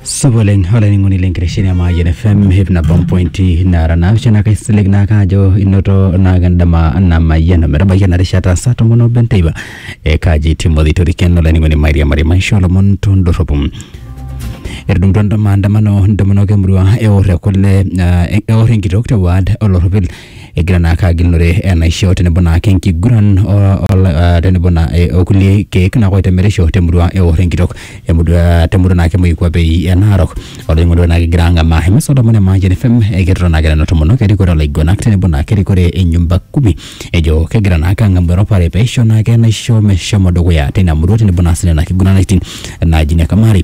supa oleng olainining'oni le nkitesheni e Mayian FM hip nabo mpointi nara naapishana kaisilig naake ajo inoto naake endama namayiana metabaiki ena rishata saa tomon obo enteipa e kaji Timothy Toriken olainining'oni mairiamari maisho olomon tondorropu etudumutua ndo- maandamano ntomonok emurua eor ekule ah, eor enkitok te ward olorropil egira naake agilunore enaisho tenebo naake enkiguran o- ol- ah, tenebo na eh, okulie keek naake oitemerisho temurua eor enkitok emurua ah, temurua naake moikuapei e Narok olainining'oni naake egira ang'amaa emisa olomon e Mayian FM ekirrita naake nena tomonok erikore olaiguanak tenebo naake erikore e nyumba kumi ejo kegira naake ang'amu eropare peisho naake enaisho meshomo dukuya tina murua tenebo naa sinena kiguranitin naaji ne kamari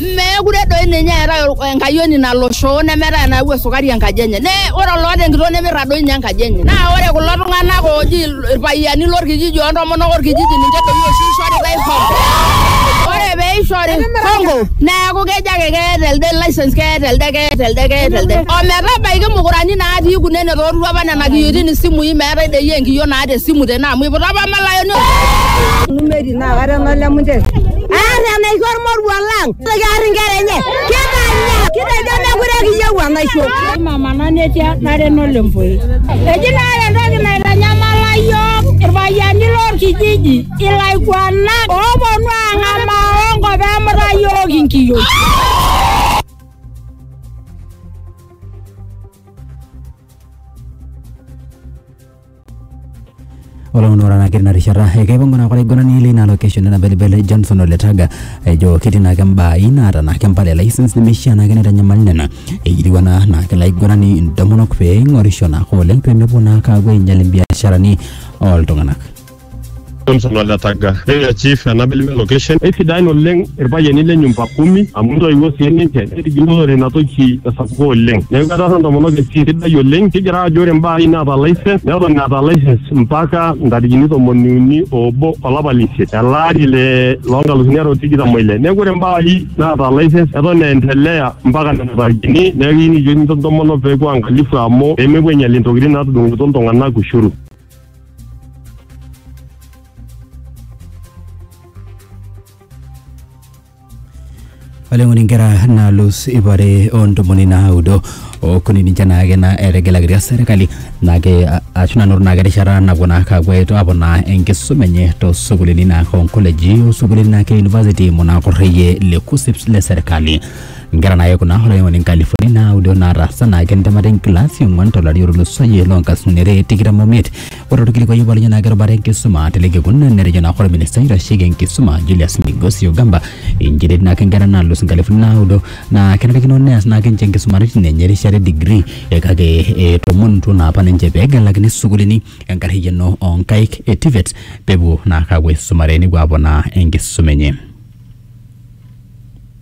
Meekure doi ninye eetae ol- enkayioni nalo shoo nemeetae enayau esukari enkaji enye. Ne ore oloota enkitoo nemirrag doi ninye enkaji enye. Naa ore kulo tung'anak ooji il- irpayiani lorkijiji ontomonok orkijiji ninche doi oshi ishoritae hongo. Ore peishori hongo neeku kejo ake keeta elde license keeta elde keeta elde keeta elde. Ometabaiki mukurani natii kunene toorutua apa nena kiyioitin isimui meetae doi enkiyio naata esimu tene amu iputa apa malayoni Naa kata enolemu nche. Aar enaisho ormoruo lang. Kiar inkera enye. Kitanya. Kitejo mekure kiyieu enaisho. Mama nanetia nare nolempoi. Eji naa ore entoki naitanyamala yiok irpayiani lorkijiji ilaiguanak ooponu ang'amaa onkop emuta yiok inkiyioi. olomoni ora naake tina rishata ekaipangu naa olaiguanani leina location ena belebele Johnson Oletaga ejo ketii naake mbaa inaata naake mpala e license nemeishia naake neitanyamal nena eyieu ena naake laiguanani intomonok pee eing'orisho naake oleng pee mepuo naake aapuo ainyial imbiasharani ooltung'anak. Samson Oletaga. Ore chief enabili me location. Eisidain oleng irpayiani le nyumba kumi amu intoiwuo sii ninche netigilunore ina toki tesapuko oleng. Neeku etaasa intomonok esiai sidai oleng. Kigira aajo ore mbaa are naata license neton eeta license mpaka ntarikini tomoni uni oobo olapa le isiet ele ari le loo nkalusuni are o tikitam oile. Neeku ore mbaa are naata license eton eendelea mpaka nena tarikini. Neeku kiyieu nikijoki intomonok peepuo aangalifu amu peemepuo ainyial intokitin naatudung'okito iltung'anak ushuru oleng'oni nkera naalus ipare ontomoni naudo okuni ninche naake na etegelakitia serkali naake a- ashu nanoto naake erishata napuo naake apuo aito- apuo naa enkisuma enye tosukulini naake onkoleji osukulini naake university munakorreyie le KUSSIPS le serkali Nkera naayai kuna olaiwuang'ani nkalifuni naaudo naataasa naa kentemata enkilasi ong'uan tolari otulusoyie loo nkasini are tikitam omiet. Ore olkilikuai obo lenye naa kerubata enkisuma te ele kekun netejo naa ore minista oitasheki enkisuma Julius Migosi Ogamba inchere etii naake nkera naalus nkalifuni naaudo naa kenarikino neas naake ninche nkisumaritin enye erishata e degree kake etomonutuo naa apa ninche pee egelakini sukuulini enkarriyiano oo nkaik e TVET peepuo naake aapuo aisumare nepuo aponaa enkisuma enye.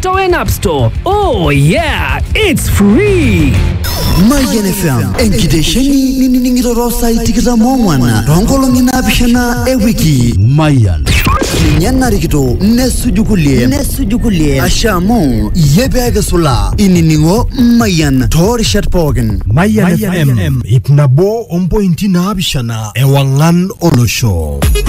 Torrent App Store. Oh yeah, it's free. Mayian FM enkitesheni nining'iroro saai tikitam ong'wan toonkolong'i naapishana e wiki Mayian ninye narikito nesuju kulie nesuju kulie ashe amu iyie pee kisulaa inining'o Mayian toorishat pookin Mayian FM ip nabo ompointi naapishana ewang'an olosho